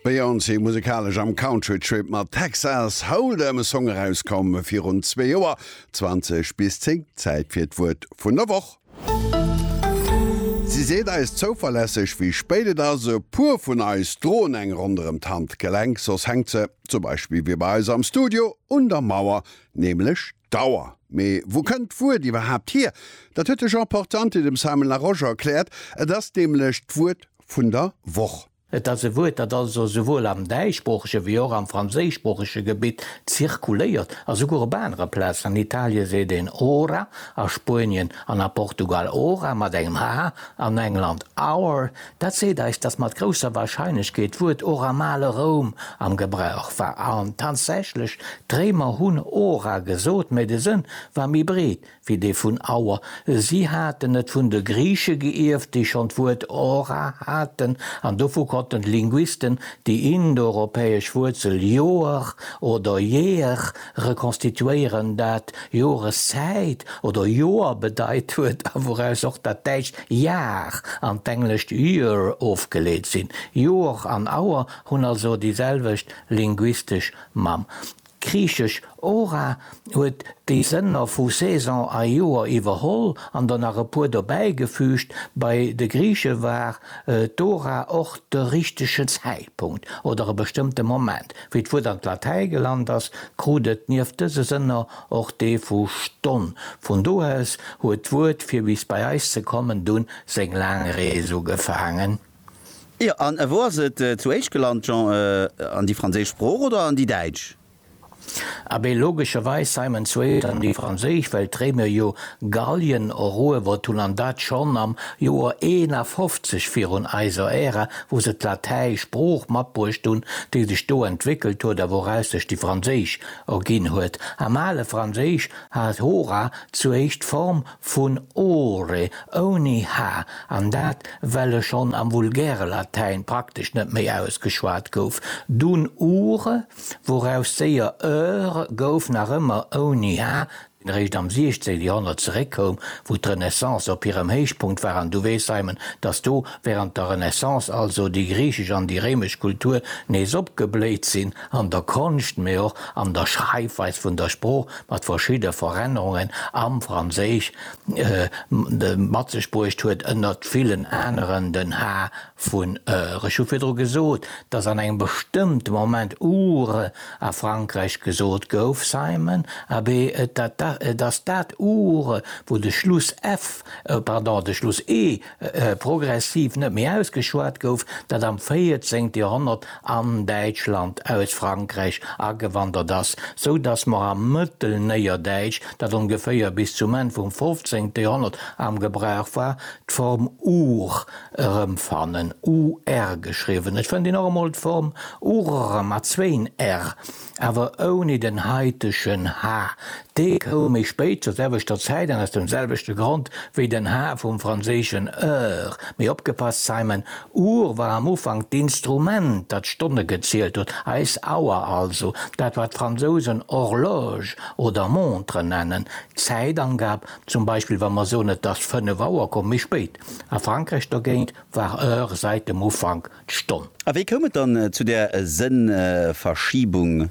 Beyoncé, musekalesch am Country-Trip mat Texas Hold'em, e Song erauskomm virun zwee Joer. 20 bis 10, Zäit fir d'Wuert vun der Woch. Si seet eis zouverlässeg, wéi spéit et ass. E puer vun eis droen eng ronderëm d'Handgelenk, soss hänkt se, zum Beispill wéi bei eis am Studio, un der Mauer, nämlech d'Auer. Mee wou kënnt d'Wuert iwwerhaapt hier? Dat huet de Jean Portante dem Simon Larosche erkläert. Et ass nämlech d'Wuert vun der Woch. Et ass e Wuert, dat also souwuel am däischsproochege wéi och am franséischsproochege Gebitt zirkuléiert a souguer op anere Plazen. An Italie seet een ora, a Spuenien an a Portugal hora mat engem h, an England hour. Dat seet eis, datt mat grousser Warscheinlechkeet d'Wuert hora am ale Roum am Gebrauch war. An tatsächlech, d'Réimer hunn hora gesot, mä de Sënn war méi breet, wéi dee vun Our. Si haten et vun de Griiche geierft, déi schonn d'Wuert Ora haten, an dovu konnten d'Linguisten déi indoeuropäesch Wuerzel Ioar oder Year rekonstituéieren, dat Joreszäit oder Joer bedeit huet a wouraus och dat däitscht Jahr an d'englescht year ofgeleet sinn. Ioar an Our hunn also déi selwecht linguistesch Mamm. D'griichesch Hora huet déi Sënner vu Saison a Joer iwwerholl an der nach e puer dobäigefüügt. Bei de Griiche war d'Hora och de richtegen Zäitpunkt oder e bestëmmte Moment. Wéi d'Wuert an d'Latäi gelant ass, krut et nieft dëse Sënner och dee vu Stonn. Vun do aus huet d'Wuert, fir bis bei eis ze kommen, dunn seng laang Rees ugefaangen. Jo, an wou ass et zu éischt gelant, Jean? An déi franséisch Sprooch oder an déi däitsch? Abee, logescherweis, Simon, zu éischt an déi franséisch, well d'Réimer jo Gallien eruewert hunn, an dat schonn am Joer 51 virun eiser Ära, wou se d'Latäisch Sprooch matbruecht hunn, déi sech do entwéckelt huet a wouraus sech déi franséisch erginn huet. Am ale Franséisch hat hora zu éischt d'Form Vun ore, ouni h, an dat well e schonn am vulgäre Latäin praktesch net méi ausgeschwat gouf, dunn ure, wouraus séier eure gouf, nach ëmmer ouni h, deen eréischt am 16 Joerhonnert zeréckkoum, wou d'Renaissance op hirem Héichpunkt war. An du weess, Simon, datt do wärend der Renaissance also déi griichesch an déi réimesch Kultur nees opgebléit sinn. an der Konscht, mee och an der Schreifweis vun der Sprooch mat verschidde Verännerungen am Franséisch mat sech bruecht huet, ënnert villen aneren den Ha vun ër. Ech hu virdru gesot, dass an engem bestëmmte Moment ure a Frankräich gesot gouf, Simon, abee, et ass dat ure, wou de Schluss f, pardon, de Schluss e progressiv net méi ausgeschwat gouf, dat am 14. Joerhonnert an Däitschland aus Frankräich agewandert ass, sou datt mer am Mëttelnéierdäitsch, dat ongeféier bis zum Enn vum 15. Joerhonnert am Gebrauch war, d'Form ur erëmfannen, ur geschriwwen. Et fënnt een och emol d'Form urr mat zwéin r. Awer ouni den heitegen H. Dee koum méi spéit zur selwechter Zäit an aus dem selwechte Grond wéi den H vum franséischen heure. Mee opgepasst, Simon, Uhr war am Ufank d'Instrument, dat d'Stonne gezielt huet, eis Auer also, dat wat d'Fransousen Horloge oder Montre nennen, d'Zäitangab, zum Beispill wa mer soen et ass fënnef Auer, koum méi spéit. A Frankräich dogéint war heure säit dem Ufank. d'Stonn. A wéi koum et dann zu där Sënnverschiebung?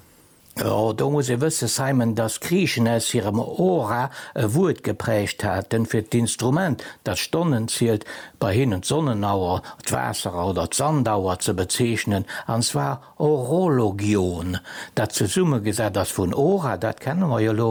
Jo, do muss ee wëssen, Simon, dass Griichen aus hirem Hora e Wuert geprägt haten, fir d'Instrument, dat Stonnen zielt, bei hinnen d'Sonnenauer, d'Waasserauer oder d'Sandauer ze bezeechnen, an zwar horologion, dat zesummegesat ass vun hora, dat kenne mer jo elo,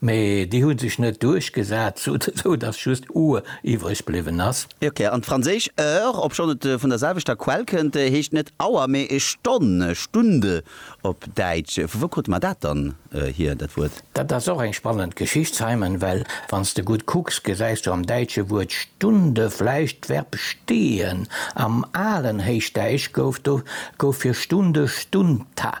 Mee déi hu sech net duerchgesat, sou dass just Uhr iwwreg bliwwen ass. Ok, an d'franséisch heure, obschonn et vun der selwechter Quell kënnt, heescht net Auer, mee Stonn, Stunde op Däitsch. Vu wou krute mer dat dann hier, dat Wuert? Dat ass och eng spannend Geschicht, Simon, well wann s de gutt kucks, gesäis du am däitsche Wuert Stunde vläicht d'Verb stehen. Am alen Héichdäisch gouf do gouf fir Stunde stundta.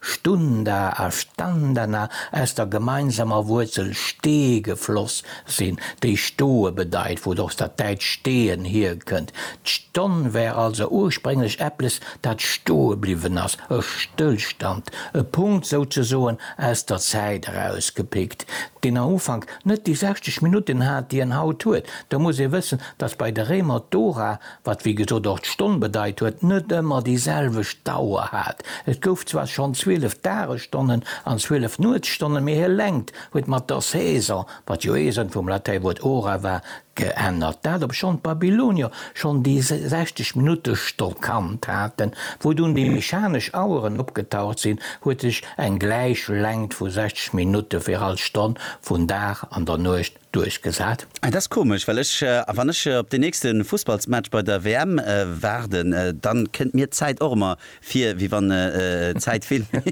Stunda a Standana aus der gemeinsamer Wuerzel ste gefloss sinn, déi stoe bedeit, wou et och dat däitscht stehen hierkënnt. D'Stonn wär also ursprénglech eppes, dat stoe bliwwen ass, e Stëllstand, e Punkt souzesoen aus der Zäit erausgepickt, deen am Ufank net déi 60 Minutten hat, déi en haut huet. Da muss ee wëssen, dass bei de Réimer d'Ora wat wéi gesot och d'Stonn bedeit huet, net ëmmer déi selwecht Dauer hat. Et gouf zwar schonn 12 Dagesstonnen an 12 Nuetsstonnen, mee hir Längt huet mat der Saison, wat jo ee Sënn vum Latäiwuert hora war, geännert, dat obschonn d'Babylonier schonn déi 60 Minutte Stonn kannt haten. Wou dunn déi mechanesch Aueren opgetaucht sinn, huet sech eng gläich Längt vu 60 Minutte fir all Stonn vun Dag an der Nuecht duerchgesat. Et ass komesch, well ech, wann ech op deen nächste Fussballsmatch bei der WM waarden, dann kënnt mir d'Zäit och emmer vir wéi wann d'Zäit vill méi.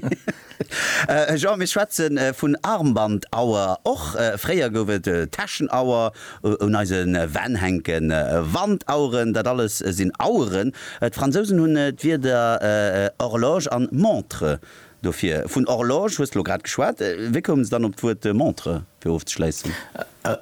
Jean, Mir schwätze vun Armbandauer, och fréier gouf et Täschenauer un eise Wänn hänken, Wandaueren, dat alles sinn Aueren. D'Fransousen hunn d'Wierder horloge an montre Dofir, vun Horloge hues de lo grad geschwat, wéi koumen se dann op d'Wuert Montre, fir ofzeschléissen?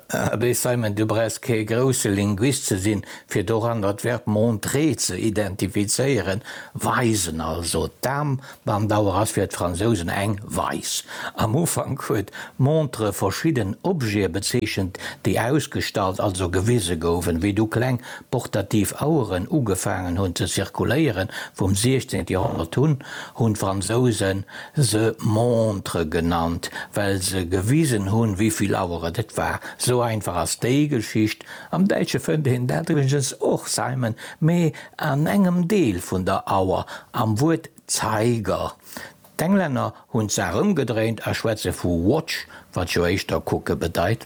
Abee Simon, du brauchs kee grousse Linguist ze sinn, fir doranner d'Verb montrer ze identifizéieren, weisen also. D'Aarmbandauer ass fir d'Fransousen eng Weis. Am Ufank huet montre verschidden Objete bezeechent, déi ausgestallt, also gewise goufen, wéi du kleng portativ Aueren ugefaangen hunn ze zirkuléieren, vum 16 Joerhonnert un, hunn d'Fransouse se Montre genannt, well se gewisen hunn, wéi vill Aueren et war. Esou einfach ass déi Geschicht. Am Däitsche fënnt een dat iwwregens och, Zeimen, mee an engem Deel vun der Auer, am Wuert Zeiger. D'Englänner hunn d'Saach ëmgedréint a schwätze vu watch, wat jo éischter kucke bedeit.